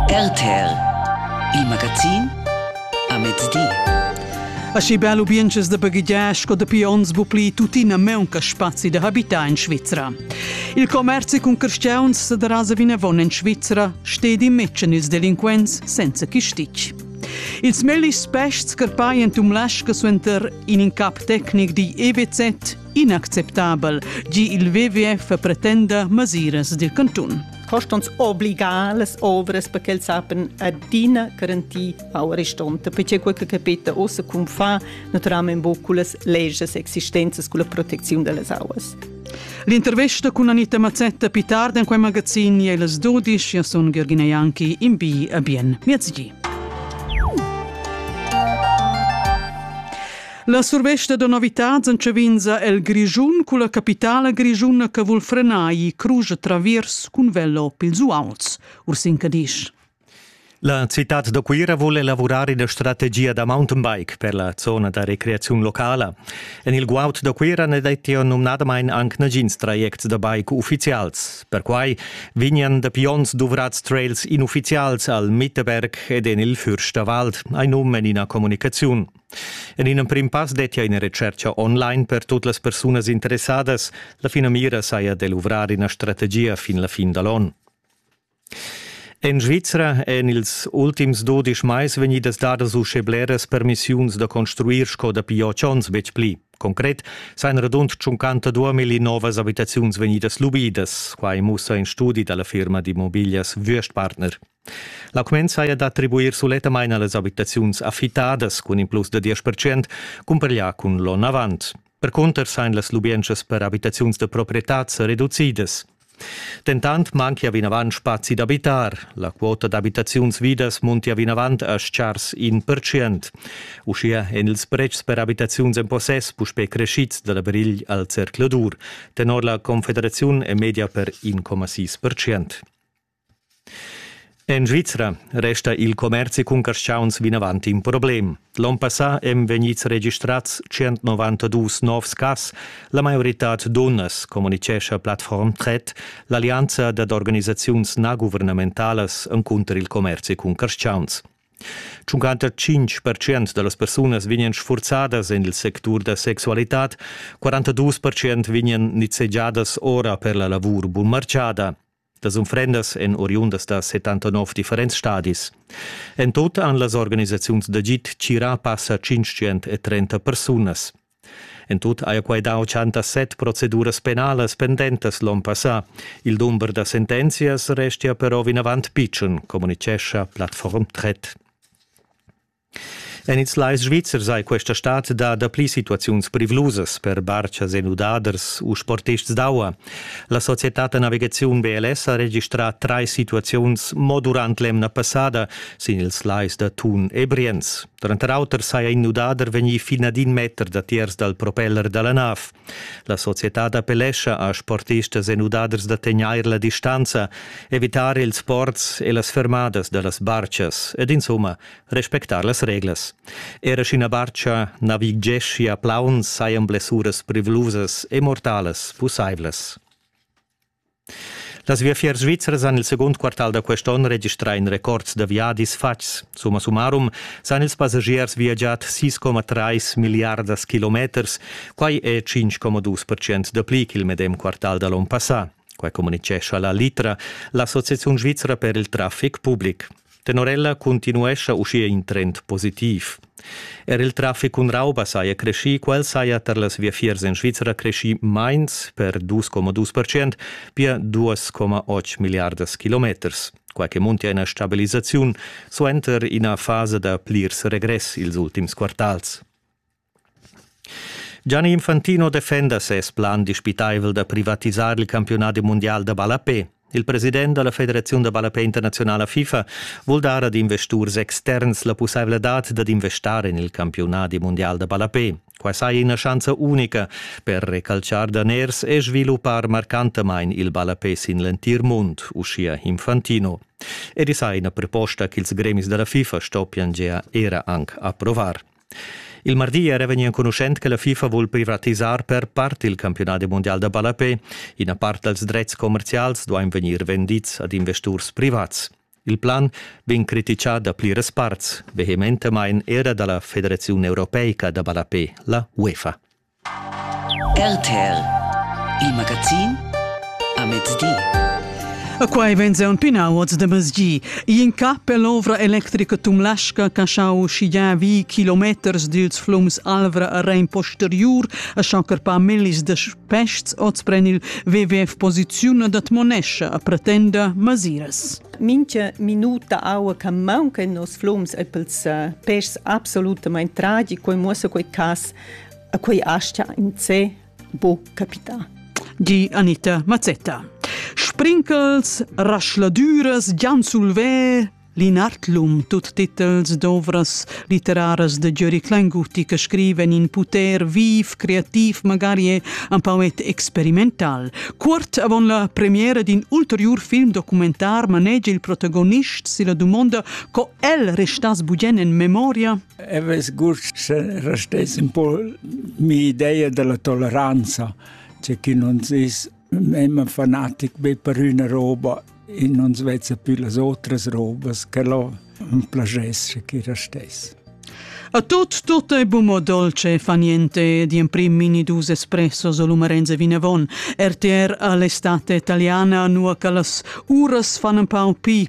RTL, il magazin a mezdi. Aschi bel ubienches da baghegiar sco dapi ons bu pli tuttina meunca spazi da habitar in Svizra. Il commerzi cun carstgauns sa darasa vinavon en Svizra, stedi metschen ils delinquents senza chistic. Ils mellis pests carpai en tum lasca suenter in incap tecnic di EWZ inacceptabel, gi il WWF pretenda masiras dil cantun. Costons obligar las ovras perché els sapen adina garantir au restonta, perché quel che capita ossa cum fa naturalmente buc con las leges existenzas, con la protezione delle auas. L'intervista con Anita Mazzetta più tardi in quel magazin è las 12, io sono Gheorghina Ianchi, in B a bien. Miezzi. La survesta da novitads entschev'inza el Grischun culla capitala grischuna che vul frenar i crugia traviers cun velo pils uauls. Ursin Cadisch. La citad da Cuira vul elavurar ina strategia da mountainbike per la zona da recreaziun locala. En il guaud da Cuira ne detti numnadamain anc nagins trajects da bike uffizials. Perquai vegnan da pions duvrads trails inuffizials al Mitterberg ed en il Fürsterwald, ein um en ina communicaziun. En in emprim pass dettia ina retschertga online per tut las persunas interessadas. La finamira saja da luvrar ina strategia fin la fin da l'onn. En Svizra èn ils ultims dudisch mais vegnidas dadas uschè bleras permissiuns da construir sco dapi otg onns betg pli. Concret sajan radund 52 million novas abitaziuns vegnidas lubidas. Quai mussa in studi da la firma d'immobiglias Würstpartner. La cumenza è d'attribuir sulettamain a las abitaziuns affittadas cun in plus da diesch percent, cumpareglià cun l'onn avant. Percunter sain las lubientschas per abitaziuns da proprietad sa reducidas. Dentant manchia vinavant spazi d'abitar. La quota d'abitaziuns vidas muntia vinavant a schars in percent. Uschia èn ils pretschs per abitaziuns en possess puspè crescids da la brigl al zercladur. Tenor la Confederaziun è media per 1,6 percent. En Svizra resta il commerzi cun carschauns vinavant in problem. L'onn passà èn vegnids registrads 192 novs cas. La maioritad dunnas, communitgescha Plattform Tret, l'allianza dad organisaziuns naguvernamentalas encunter il commerzi cun carschauns. 55% da las persunas vegnan sfurzadas en il sectur da sexualitad, 42% vegnan nizzegiadas ora per la lavur bunmartgada. Las unfrendas èn oriundas da 79 differents stadis. En tut han las organisaziuns d'agid tgirà passa 530 persunas. En tut haja quai dà 87 proceduras penalas pendentas l'onn passà. Il dumber da sentenzias restia però vinavant pitschen, communitgescha Plattform Tret. En ils lais svizzers hai questa stad dà dapli situaziuns privlusas per bartgas e nudaders u sportists d'aua. La societad da navigaziun BLS ha registrà trais situaziuns mo durant l'emna passada sin ils lais da Thun e Brienz. Tranter auter saja in nudader vegnì fin ad in meter datiers dal propeller da la nav. La societad appellescha a sportistas e nudaders da tegnair la distanza, evitar ils sports e las fermadas da las bartgas ed insumma respectar las reglas. Era sch'ina barcha naviggeschia plaun sajan blessuras privlusas e mortalas pussaivlas. Las viafiers svizras han il segund quartal da quest onn registrà in records da viadis fatgs. Summa summarum san ils passagiers viagiar 6,3 miliardas kilometers, quai è 5,2% dapli ch'il medem quartal da l'onn passà. Quai communitgescha la Litra, l'Associaziun svizra per il traffic public. Tenor ella continuescha uschia in trend positiv. Er il traffic cun rauba saja creschì, quel saja tar las viafiers en Svizra creschì mains per 2,2 percent, pia 2,8 milliardas kilometers. Quai che muntia ina stabilisaziun suenter ina fasa da plirs regress ils ultims quartals. Gianni Infantino defenda ses plan dispitaivel da privatisar il campiunadi mundial da ballapè. Il president da la Federaziun da ballapè internaziunala FIFA vul dar ad investurs externs la pussaivladad dad investar en il campiunadi mundial da ballapè. Quai saja ina schanza unica per recalciar daners e sviluppar marcantamain il ballapè sin l'entir mund, uschia Infantino. Ed i sa ina proposta ch'ils gremis da la FIFA stoppian gea era anc approvar. Il mardi era vegnì enconuschent che la FIFA vul privatisar per part il campiunadi mundial da ballapè. Ina part dals dretgs commerzials duain vegnir vendids ad investurs privats. Il plan vegn criticà da pliras parts, vehementamain era da la Federaziun europeica da ballapè, la UEFA. RTL Il magazin a mezdi. E quai vegn un pinau oz de mezgi. In ca per l'ovra electrica tumlasca che schau schigiar vi kilometers dils flums Alvra a Rein posteriur a schau carpar millis de pests oz pren il WWF posizione dat monescia a pretenda masiras. Mincha minuta aua che manca in nos flums e pels pests absolutamente tragico e muossa quei cas e quei aschia in se bo capita. Di Anita Mazzetta. Sprinkels, raschladüras, Gian Sulvè, Linartlum, tut titels d'ovras literaras de Giori Klenguti che scriven in puter viv, creativ, magari un pauet experimental. Cuort avon la premiera d'in ulterior film documentar manegia il protagonist si la dumonda co el restas bugen en memoria. e vess gust se restess un po mi idea della toleranza, c'è chi non sis immer fanatic be per una roba e non svezza più las otras robas che lo plagesce chi restess. A tot tot è bumo dolce fa niente di prim mini dus espresso solo Marenze Vinavon, RTR all'estate italiana nuoca las uras fanno un pau pi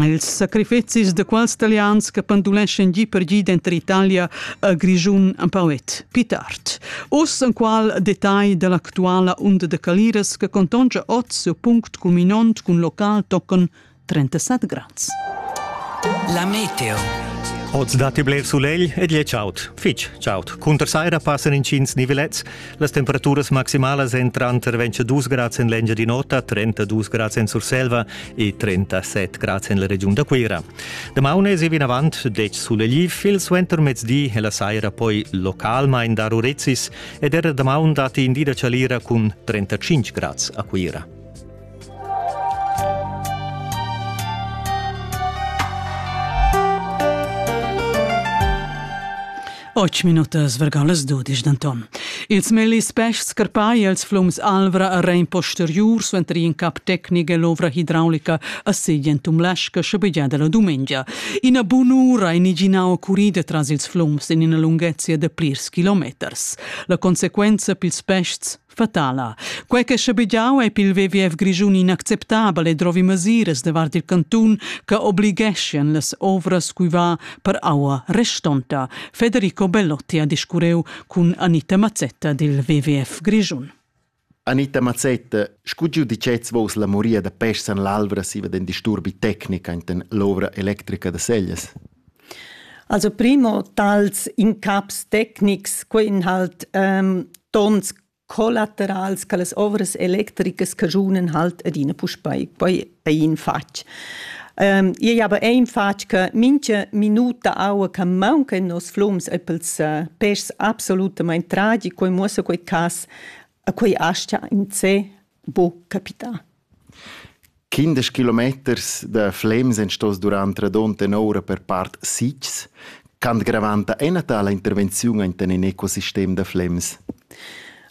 Ils sacrifecis da quels talians che penduleschan gi per gi denter Italia e Grischun empau et pli tard. Uss en qual detagl dall'actuala unda de Caliras che contonscha oz il punct culminont cun local tochen 37 grads. La meteo. Oz datti bler sulegl ed je chaud. Fitg chaud. Cunter saira passan intgins nivelets. Las temperaturas maximalas èn tranter 22 grads en l'Engiadin'Ota, 32 grads en Surselva e 37 grads en la regiun da Cuira. Damaun èsi vinavant detg sulegliv, il suentermezdi e la saira poi localmain dar urezis ed era damaun datti in di da chalira cun 35 grads a Cuira. Ocho minutas vergan las dudisch denton. Ils mellis peschs scarpai els flums Alvra a Rein posteriur suenter in cap tecnic e l'ovra hidraulica a Segien Tumlasca schabegiada la dumengia. Ina bunura in iginau curida tras ils flums en ina lunghezia de plirs kilometers. La consequenza pils peschs fatala. Quei che schabegiau ei pil WWF Grischun inacceptabel e drovi mesiras davart il cantun che obligheschien las ovras cui va per aua restonta. Federico Bellotti ha discurreu cun Anita Mazzetta dil WWF Grischun. Anita Mazzetta, scu giudicez vos la moria da pes san l'alvra siva den disturbi tecnica enten l'ovra electrica da Sellas? Also primo tals incaps tecnics, quei in halt ehm, tons collaterals che las ovras electricas caschunen halt adina puspei poi per in fatg. Ähm, ei aber ein fatg che mincha minuta aua che maunca in nos flums e pels äh, pèschs absolutament tragico e muossa quei cas a quei astia in se bo capità. Quindesch kilometers da Flems ein staus durant radunta ora per part sitgs ch'han gravanta ina tala intervenziun enten in ecosistem da Flems.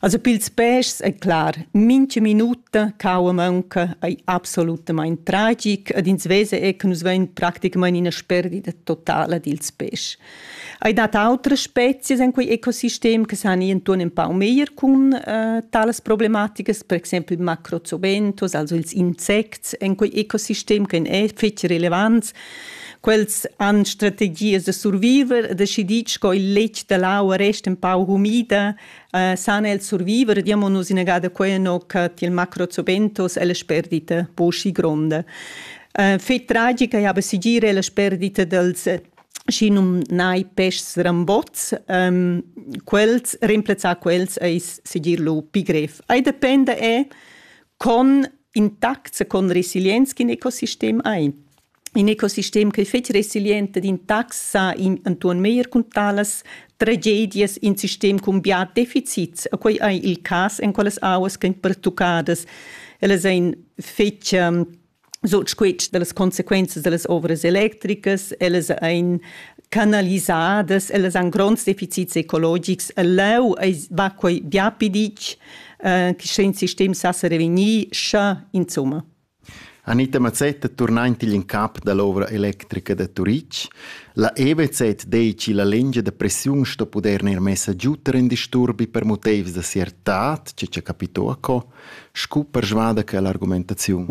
Also pils pèschs è clar, mincha minuta caua maunca ei absolutamain tragic ed ins vesa er che nus vein practicamain ina sperdida totala dils pèschs. Hai dat autres spezies en quei ecosistem che san ir intuorn empau meglier cun eh, talas problematiches, per exempel il macrozoventus, also ils insects en quei ecosistem che è fetg relevants. Quels han strategies da surviver, decidic co il letg da l'aua resta un pau humida, eh, sana il surviver, diamo nus inagada quei no che il macrozoventus è la sperdita posci gronda. Eh, fet tragica è aber sigire la sperdita dels schi numnai peschs rambots, ähm, quels, remplazzar quels eis segir lu pi grev. Ei dependa è con intacts e con resilienz che in ecosistem hai. In ecosistem che fetg resiliente d'intax sa in antuon meir cun talas tragedias in sistem cun bia deficits, a quei ei il cas en quellas auas che pertucadas. Ellas ein fetg um, sut squitsch dallas consequenzas dallas ovras electricas, ellas ein canalisadas, ellas han gronds deficits ecologics. Leu va quei bia pi ditg, eh, che sche in sistem sa revegnir, scha insomma. Anita Mazzetta turnaint in cap dall'ovra electrica da Turitg. La EBZ dici la lengia da pressiun sto puder neir messa giuter in disturbi per motivs da siertat, ce ce capito a co. scu persvada che l'argumentaziun.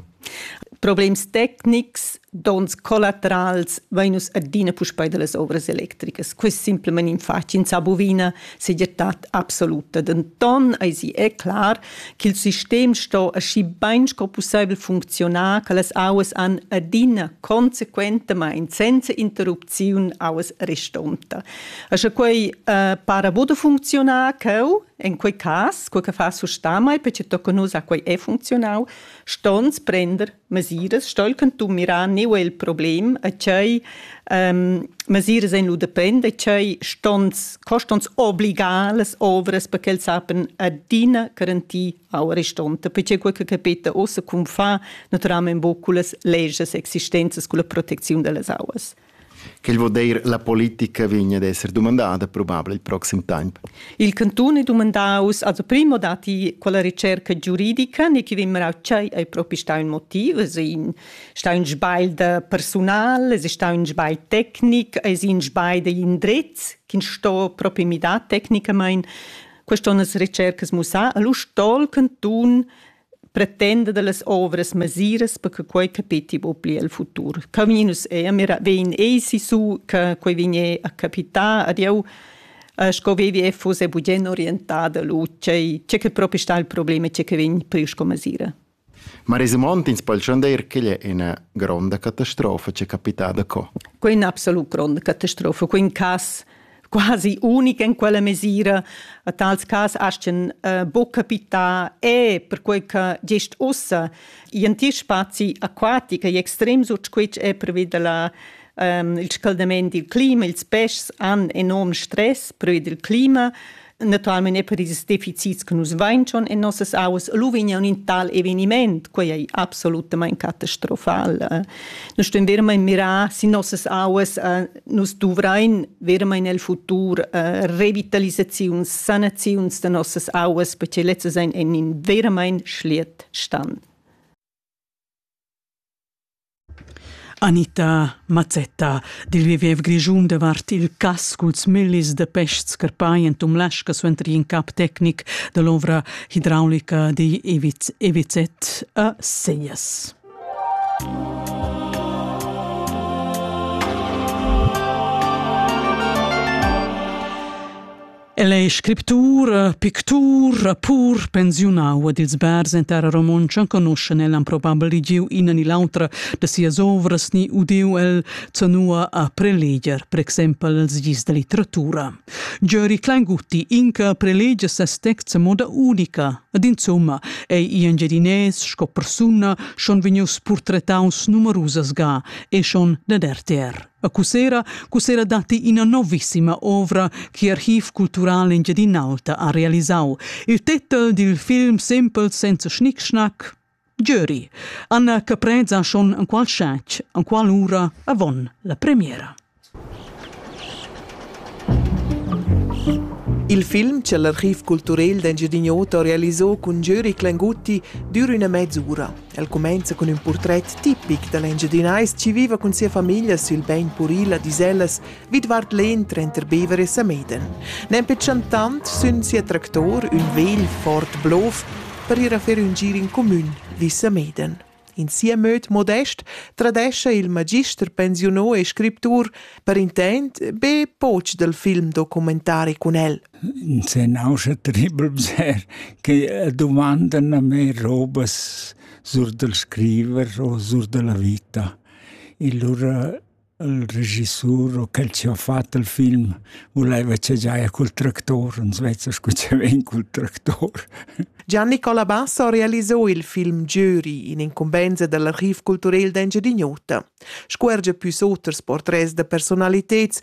Problems tecnics, dons collaterals vainus adina puspei dallas ovras electricas. Quest simplement in faci in sa bovina segirtad absoluta. Denton eisi è clar ch'il sistem sto aschi bein sco pusseivel funzionar che las auas han adina consequentamain senza interrupziun auas restonta. Asche quei uh, para bod funzionar cheu En quei cas, quei che fa sustamai perché tocca nus a quei è funzionau, stons prender mesiras, stolken tu mirar neu el problem, a tgei ähm, mesiras en lu depend, a tgei stons, costons obligales ovras perché els sapen adina garantir a restanti, perché quei che capita ossa cum fa naturalmente buculas leges existenzas con la protezione delle auas. Quel vul dir la politica vegn ad esser dumandada probabel il proxim temp. Il cantun è dumandaus also primo dati quella ricerca giuridica ne che vimmer tschei ei propi sta un motiv, es in sta un sbagl da personal, es sta un sbagl tecnic, es in sbagl da indrez che sto propi mi da tecnicamain. Quest onnas ricercas musa, allo sto il cantun pretenda dallas ovras masiras per che quei capetti buca pli el futur. Camin nus ei mira vegn ei si su che quei vigne a capitar ad jeu sco WWF fosse bugen orientada lu tgei tgei che proprio sta il problema tgei che vegn pli sco masira. Ma resimont ins poi dir che è una gronda catastrofa che è capitada co? Quella è una absolut gronda catastrofa. Quel cas quasi unic en quella mesira. A tals cas astien uh, bo capità e perquei che gest ussa in ti spazi aquatica e extrem sut squitsch è previd la um, il scaldament dil clima, ils pes han enorm stress previd il clima Naturalmein è per ils deficits che nus vain schon en nossas auas lu vegna un in tal eveniment, quei è absolutament catastrofal. Noi ston vermein mirar si nossas auas, äh, nus duvrein vermein el futur äh, revitalisaziuns, sanaziuns de nossas auas, perché letztes ein in vermein schliet stand. Anita Mazzetta dil viver grischun davart il cass culs millis da peschs carpai en Tumlaschka suenter in cap tecnic dall'ovra hidraulica digl EWZ a Segnas. El ei scriptura, pictur, rappur, pensiunau ed ils bars en terra romontscha enconuschen el han probabel ligiu ina ni l'autra da sias ovras ni udiu el zanua a preleger, per exempel els gis da litteratura. Giori Kleingutti inca prelegia ses texts a moda unica ed insomma ei in Engiadinès sco persuna schon vegnius purtretaus numerusas ga e schon dad RTR. A Cussera Cussera datti ina novissima ovra che Archiv cultural Engiadin'Alta ha realisau. Il titel dil film Simpel senza schnickschnack Jury. Anna Caprez ha schon an qual schatg, an qual ura avon la premiera. Il film che l'Archiv culturel d'Engiadin'Ota realisò cun Jury Clengutti dura una mezz'ura. El cumenza cun ün purtret tipic da l'Engiadinais chi viva cun sia famiglia sül bain puril a Disellas vidvart l'En tranter Bever e Sameden. Nempe chantant sün sia tractor ün vegl Ford Blov per ir a fer ün gir in cumün vi Sameden. In sia möd modest tradescha il magister pensiunò e scriptur per intent be poch dal film documentari cun el S'è nauscha terribel bser che dumandan a me robas sur dal scriver o sur da la vita. E lura il regissur o quel chi ho fat il film vulaiva cha giaja cul tractor, ans vezza scu cha vain cul tractor. Gian Nicola Bassa ha realiso il film Jury in incumbenza dal archiv culturel d'Engiadin'Ota. Scu er già püs oters portrets da personaliteds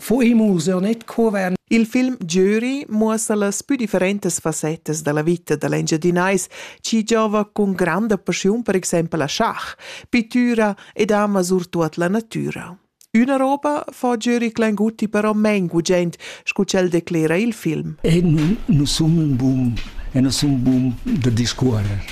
Fu emozion net coven. Il film Jury muossa las più differentas fassettas della vita dell'Engiadinais, chi giova con grande passiun per exempel a schach, pittura ed ama surtuot la natüra. Üna roba fa Jury Klanguti però men gugent, scu ch'el declera il film. E nu sun bun, e nu sun bun da discuorrer.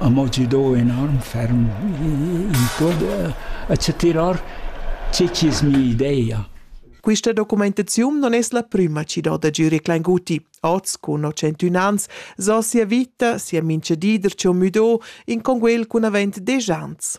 ha mo giu dau enorm ferm in cuort a setirar tgi chi's mi'idea. Quista documentaziun non es la prüma chi do da giurir Klainguti. Oz, cun ho centun ans, so sia vita, sia minchedider chi ho müdo, in conguel cun avent desch ans.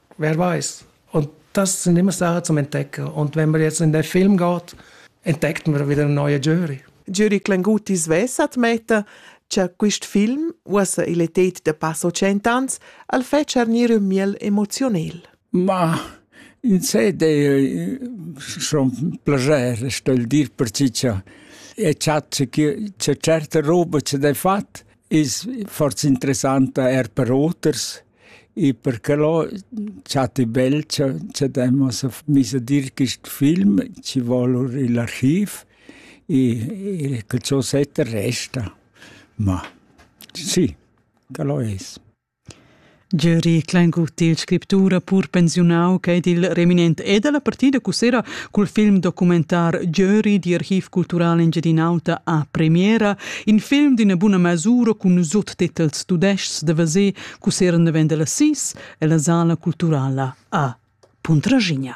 wer weiß. Und das sind immer Sachen zum Entdecken. Und wenn wir jetzt in den Film gehen, entdecken wir wieder einen neuen Jury. Jury Clenguti svessa admetta cha quist film, uossa il etet da passo cent'ans, al fetscha gnir ün miel emozionel. Ma in sé de schon plager stell dir per cicha e chat che c'è certe roba che de fat is forse interessanta er per oters E perque lo chatti bel cha cha daimus miss a dir quist film, chi voul our i'l archiv e e che cho setta resta. Ma sì, que lo es. Gieri Kleingutt, il scriptura pur pensiunau ch'ei dil reminent e dalla partida cussera cul film documentar Giöri di Archiv Cultural Engiadin'Auta a premiera In film d'üna buna masura cun suttitels tudescs da veser cusseren davent da las 6 e la Sala Culturala a Puntraschigna.